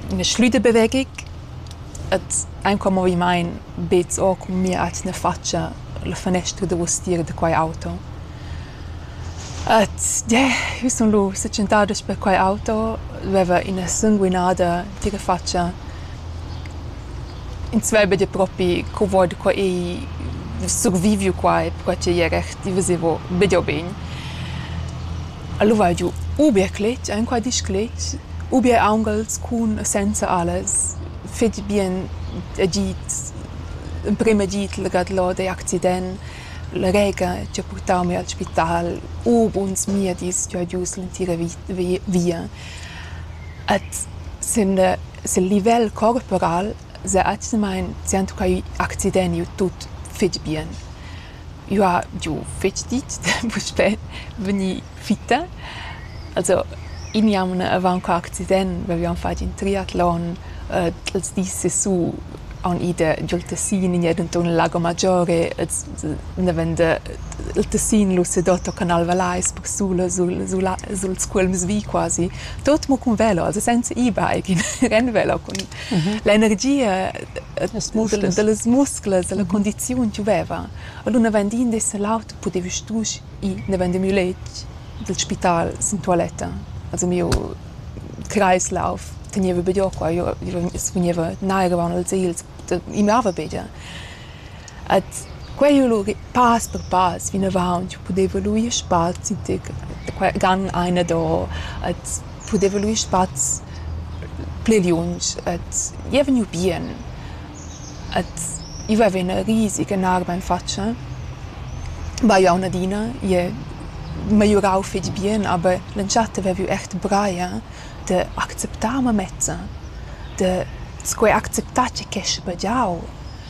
Ina schlüda bevegic ed aunc cun movimaint beds o cun mia atgna fatscha la fanestra davostiera da quai auto. Ed yeah, jeu sun lu setschentada sper quai auto, veva ina sanguinada tira fatscha. Ins veva dir propi co vart co ei surviviu quai, perquai ch'ei era erti, veseva be dir bogn. Alura hai giu u bia cletg enqual discletg u bia aunghels cun e senza alas fetg bien agid, emprem agid legau là dagl accident, la rega che ha purtau mi al spital, u buns miedis che ha giu l'entira via. Ed sin sil livel corporal sa atgnamein sentucai accident iu tut fetg bien. Eu ha giò fetg dit da puspè vegnir fitta. Also iniamun avant qua accident vaivan fat in triatlon d'ls dis sesù haun i da giò'l Tessin in jeda inturn al Lago Maggiore els andavan da il Tessin Lussedotto Canal Valais persula sul sul a sul's cuolms vi quasi, tuot mo cun velo, also senza e-bike, ren velo cun L'energia dallas musclas, dalla condiziun che veva. Allura naven din d'esser l'aut pudeva strusch ir naven da miu letg dal spital sin tualetta. Also miu Kreislauf tegneva be giò qua, io sfugneva nairavaun als egls, i mava be gia. Ed quei ho lur pass per pass vinavant pudeva lur ir spazi tic qua gan aina do ed pudeva lur ir spaz pli liunsch ed i ei vegniu bien. Ed i vaiva üna risig enorma in fatscha. Vai auna adina, i è megliurau fetg bien, aber l'entschatta aveva eu eir braia da acceptar mamezza, da sco eir acceptar che quescha pagiau.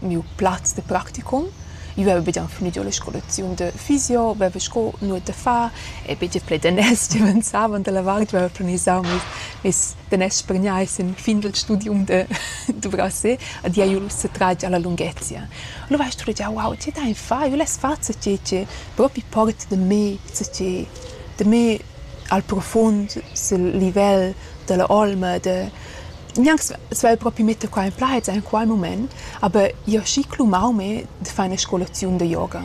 miu plaz de practicum. Io veva began finiu la scolaziun de fisio, veva sco nuot da far e begie plaid daners che venzavan dalla vart, veva planisau mes, mes daners per gnir sin fin dal studium de Dubrasset ed ia jul setratg alla lunghezia. Alura hai studegiau, wow, tge dein far? Io less far zatgei che propi porta da me, zatgei da me al profund sil livel dalla olma, de Gnanc svelt propi metter qua en plaids en qual mument, aber jeu schi clumau me da far ina scolaziun da yoga.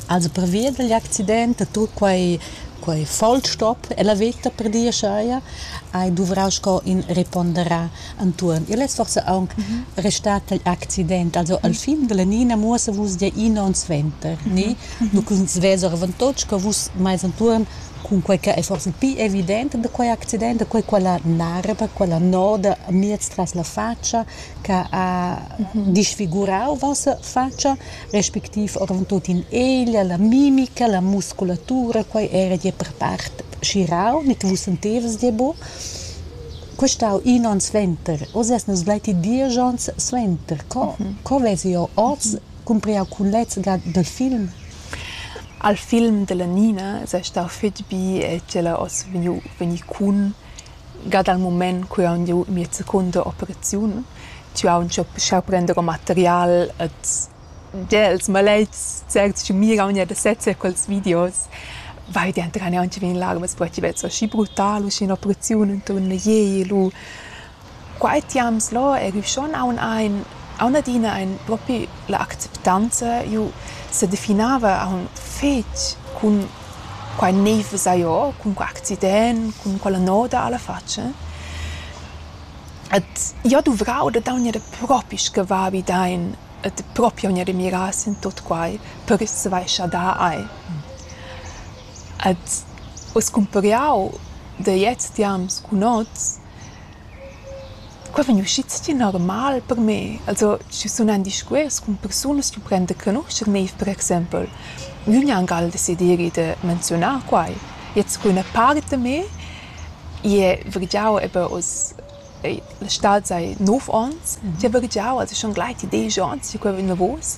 Also pervia dagl accident ha tut quei quei vollstop ella veta per dir aschia, hai duvrau sco in reponderar entuorn. Igl es forsa aunc restat igl accident. Also al fin dalla Nina muossa vus dir ina onn suenter, ni? Nu ch'ins vess oravontut sco vus mais entuorn Cunquei che ei forsa pli evident da quei accident da quei quella narra, quella noda miez tras la fatscha che ha disfigurau vossa fatscha, respectiv oravontut in eglia, la mimica, la musculatura, quei era gie per part schirau ni che vus sentevas gie buc. Quei stau in onn suenter. Oz eis nus gleiti diesch onns suenter. Co, co vesi jeu oz cumprer cun lezza dal film? Al film della Nina es stau fich bi e tg'ella oss vegniu vegnì cun gia dal mument cu haun giu mia secunda operaziun. Tü haun sciau prender ün material et gia ils maletgs certs chi miraun eir da sezzer quels videos vai dentrar neauncha vi in larmas perche vel so aschi brutal usche ün'operaziun inturn a iel u Quai tiams là eir eir schon aun aint aun adina aint propi la acceptanza. Eu sedefinava aun fetg cun quai nouv esa jo, cun quai accident, cun quella noda a la fatscha. Ed jo duvrau da daugner propi sche va vi dain ed propi aunc adina miras in tuot quai per as svaischer da ai. Ed uss cumpariau da jetzt tiams cun hoz Qua vegn uschi stgir normal per me. Also schi sun en discuors cun persunas ch'eu prend a canuscher neiv per exaimpel. Gnü gnancal desideri da menziunar quai. Jetzt scu üna part da me ie vargiau eben hoz la stad sai nov ons. D'he vargiau, also schon gleiti desch ons che quai vain lavurs.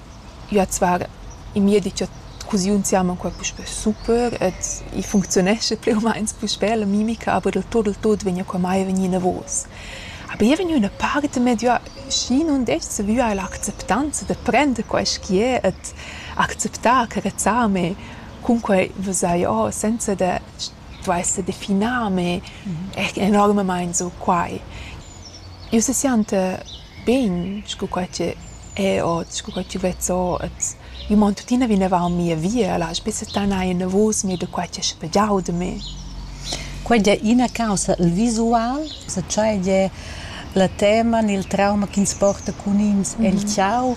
Üa zvar in miedi cha cuziun siamo inqual puspè super ed i funcziunescha plü u mains puspè la mimica, aber del tot, del tot vegna qua mai vegnì inavos. Aber eu vegn üna part medio schi nun dess savüar la acceptanza da prender quaisch chi es ed acceptar, carezzar me. Cunquai vesà jo senza da stuair sa definar me enormamaing sur quai. Ün se sianta Bein sco quai che è ot, sco quai ch'jeu vez ot. Io mon tuttina vinavant mia via, lasch be settanar enavos mei da quai ch'è spegiau da me. Quei ei ina caussa, il visual, sa tschei la tema ni il trauma ch'ins porta cun ins el tgau.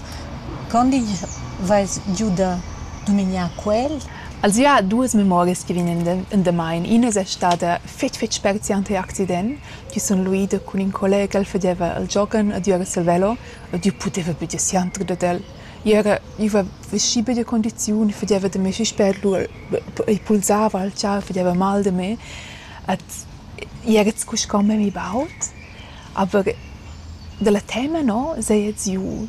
Quando igl veis giu da dumignar quel? Els ha duas memorias che vegnan endamain. Ina es stada fetg fetg spezial tar accident. chi sun luida cun ün collega ch'el fadeva al giogan adüra il velo ed io pudeva be dir siandre dad el. I era iva veschi be da condiziun, i fadeva da me fich spert, lura i pulsava al char, fadeva mal da me ed i era scu sco memmi baud, aber da la tema no seigi giù.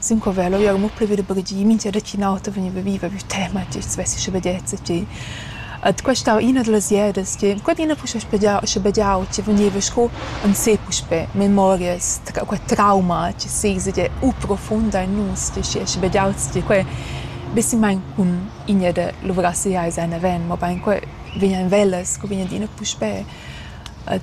Sincover l'oiera mo plü vi da baghegiar, mincha di ch'ün auter vegniva viva vi tema e tü svessi schabegiezza tgi. Ed questa era üna da las ieras che quand'üna puspe spedgia schabegiau tgi vegniva sco ün sé puspè memorias, quai trauma chi s'esa tgi u profuonda in nus tgi schi ha schabegiauts tgi quai be simmaing cun iina da luvrasse eir seis aven, mobain quai vegnan velas co vegnan adina puspè. Ed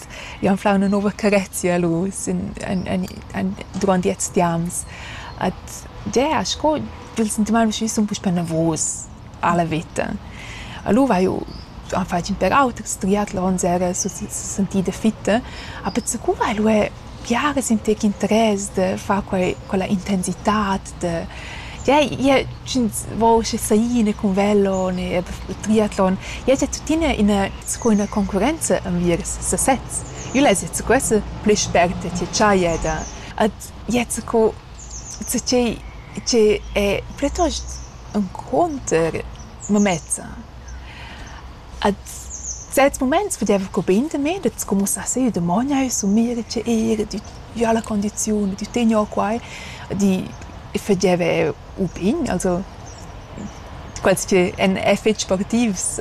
August. Jau fau üna nouva carezia lur sün en en en durant ils tiams. Ed yeah, sco il sentimaint usché sun puspè navus alla vita. Alura haju am fatg ün pêr auters triatlon s'era sentida fitta. A Pezzacura ha'l uè biaras in tec interess da far quai quella intensitat Ie ie sch'ins vogl schi saina cun velo ne eir triatlon, ie es tuttina ina sco üna concurrenza enviers sasezs. Ün es jet scu questa plü spert e tscherchaja da ed ie sco co chi chi è plitost encunter mamezza. Ad zerts muments vedeva Cubin también da scumussar sia damogn eir sün mir e tgir, dü già la condiziun, dü tegner quai, di fageva eir u pign, also quels chi èn eir fich sportivs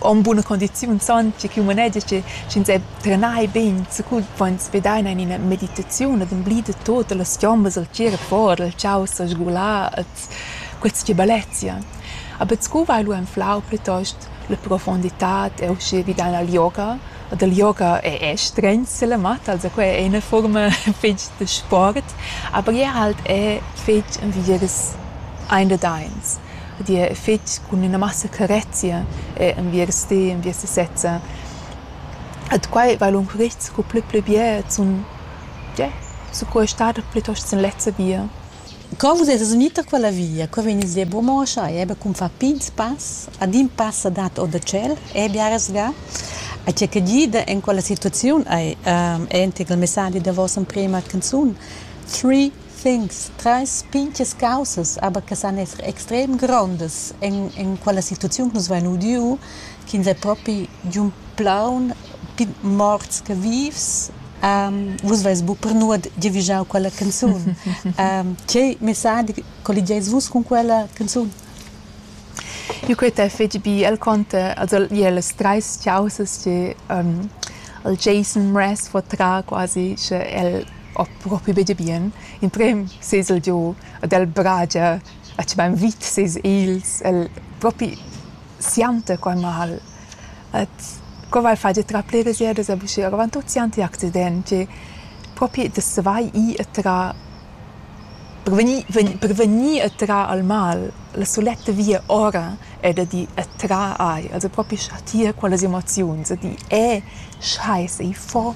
han buna condiziun, san tge ch'ün manegia che sch'ins è trenai bain, sicur pon svedaina in ina meditaziun ad emblida tuot da las chiombas dal tgir a fora, dal chau s'asgular, ad Quels tgi bellezia. A bet sco vai lu anflau plitost la profunditad e uschè vi dalla yoga. E dal yoga è è stregns silla matta, also quai è üna fuorma fetg da sport, aber jeu halt è fetg envieras ein dad eins. Ed jeu è fetg cun üna massa carezia è envieras ti, envieras ti sezza. Ed quai vai lung rit sco plü pli bia e zun, ja, sco ei stada plitost sin lezza via. Co vus esas gnü tar quella via? Qua vegnis dir buca mo a schai, eber cun far pigns pass, adin pass sa dat or da tschel, e biaras ga. A tgei che gida en quella situaziun ei entgl il messadi da vossa emprema canzun: Three things, treis pintgas caussas, aber che san esser extrem grondas en en quella situaziun che nus vein udiu, ch'ins ei propi giun plaun morts che vivs vus veis bu per nuot giavischau quella canzun tgei messadi colligeis vus cun quella canzun Io quei t'è fetg bi el conta also ie las trais chausas che um, il Jason Mraz fo tra quasi sche el ho propi be bien in prem sez el giu ad el bragia a che bein vit sez ils el propi sianta quei mal Et co val far da trar pliras ieras a buscher? Avant tut siand ti accident che propi da savair ir e trar per vegnir vegnir per vegnir e trar al mal la suletta via ora è da dir e trar aria, also propi chatir quellas emoziuns, da dir e scheiße, il fo.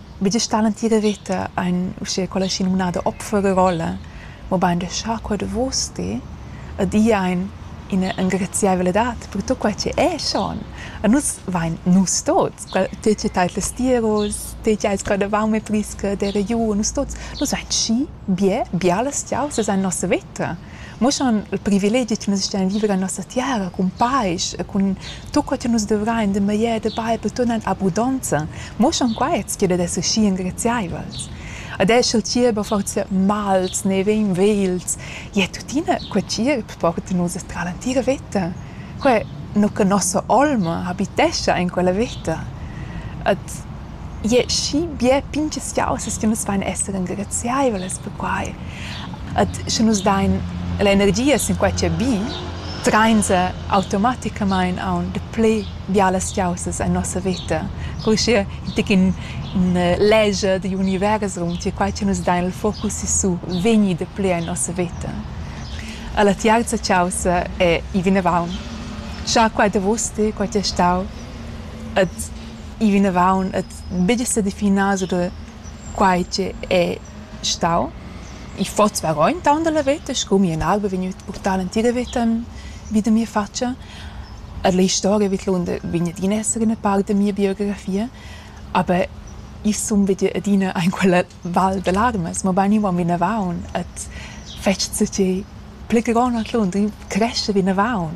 Vit es stat l'entira veta aint uschè quella schinumnada Opferrolle, mobain da schar qua davos ti ed ir aint ina engraziaivladad per tut quai chi es schon. E nus vain nus tuots, te chi t'hais las tiaras, te chi ais gradavaume prisca d'eira giù, nus tuots, nus vain schi bia, bialas chiausas aint nossa veta. muossan il privilegi chi nus stain viver en nossa tiara cun pais e cun tut co chi nus dovrain de meglier de bain per tut in abundanza, muossan quaits chi'd es aschi ingraziaivels. Ed eir sch'il tgierp ha forsa mals, ne vegn vegls, ie tuttina quel tgierp porta nus tra l'entira veta. Quai nu che nossa olma habitescha in quella veta. Ed Ie schi bia pin che schiauzas che nus vain esser engraziaivlas per quai. Ed sche nus dain l'energia sin quai chi è bi, trainsa automaticamaing aunc dapü bialas schiauzas en nossa veta. Cur uschia in tec in üna legia digl univers raunter quai cha nus dain il focus sisù vegni dapü en nossa veta. E la tiarza chaussa è i vinavaunt. Scha quai davos ti, quai ti è stau. Ed i vinavon et betg sa definar sur da quai che è stau. I fot svarogn taunt dalla veta sco mia alba vegnüt purtada entira veta in vita mia fatscha. Er l'istoria vidlunder vegn adina esser üna part da mia biografia, aber i sun vegnü adina aint quella val da larmas, mobain io am vinavaun et fetsch co che pli che gronda tlun, cresce vinavaun.